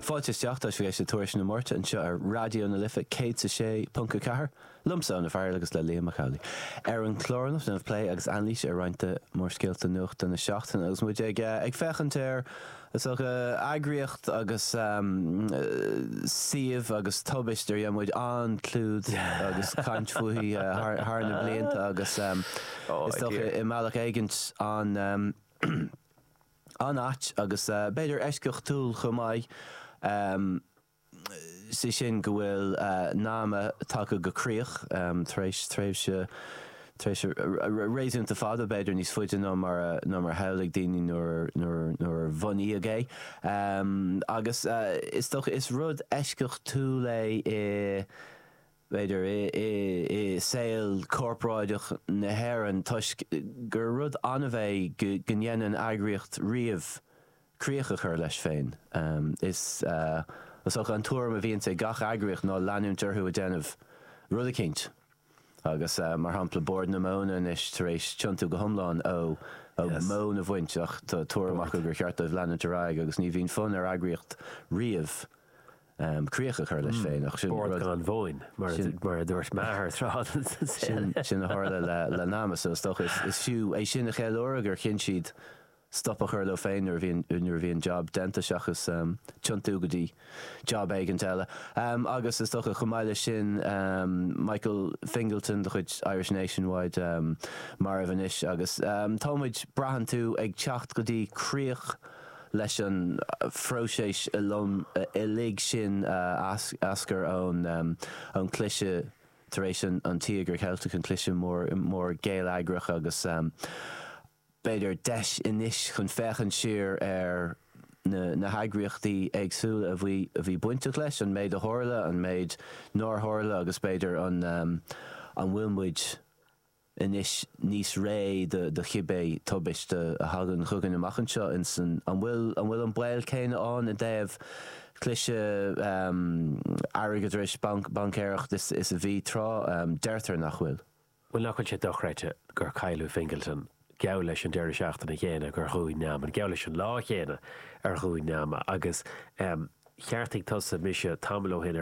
Fáilte isteach, tá sibh ag éisteacht le Tuairisc na Máirte anseo ar Raidió na Life 106.4, liomsa, Eoin Ó Fearghail, agus le Liam Mac Amhlaigh. Ar an chlár anocht déanfaidh muid plé agus anailís ar roinnt de mhórscéalta nuachta na seachtaine agus muid ag féachaint ar is dócha eagraíocht agus suíomh agus tubaist ar dhein muid an-chlúdach agus caint fúithi thar na blianta agus is dócha i mbealach éigint an an-ait agus b'fhéidir eisceachtúil chomh maith, sé sin go bhfuil NAMA tagtha go críoch tar éis tréimhse réasúnta fada, b'fhéidir níos faide ná mar a shamhlaigh daoine nuair a bunaíodh é. Agus is dócha is rud eisceachtúil é i. b'fhéidir, i saol corporáideach na hÉireann toisc gur rud annamh é go ndéanann eagraíocht riamh críoch a chur leis féin. Is dócha an tuairim a bhíonns ag gach eagraíocht ná leanúint orthu ag déanamh rud eicínt agus, mar shampla, Bord na Móna anois tar éis tiontú go hiomlán ó mhóin a bhaint ach tá tuairim acu gur cheart dóibh leanúint ar aghaidh agus ní bhíonn fonn ar eagraíocht riamh críoch a chur leis féin. Ach sin rud. 'Bord gan mhóin', mar a dúirt m'athair tráth. Sin a tharla le NAMA so is dócha. Is fiú é sin a cheiliúradh, gur chinn siad stop a chur leo féin nuair a bhí an jab déanta seachas tiontú go dtí jab éigin eile. Agus is dócha, chomh maith leis sin, Michael Fingleton de chuid Irish Nationwide marbh anois agus tá muid, braitheann tú, ag teacht go dtí críoch. Leis an phróiseas uilig sin a d'eascair ón gcliseadh tar éis an Tíogair Cheiltigh, an cliseadh mór geilleagrach agus, b'fhéidir, deis anois chun féachaint siar ar na heagraíochtaí éagsúla a bhí bainteach leis, an méid a tharla, an méid nár tharla agus, b'fhéidir, an bhfuil muid. anois níos réidh do chibé tubaiste a thagann chugainn amach anseo insan, an bhfuil, an bhfuil an baol céanna ann i dtaobh cliseadh airgeadrais, baincéireacht is a bhí tráth, deirtear nach bhfuil? Bhuel, nach bhfuil sé dochreidte gur cailleadh Fingleton, geall leis an deireadh seachtaine chéanna gur dhún NAMA, geall leis an lá chéanna ar dhún NAMA, agus cheartaigh tusa mise tamall ó shin,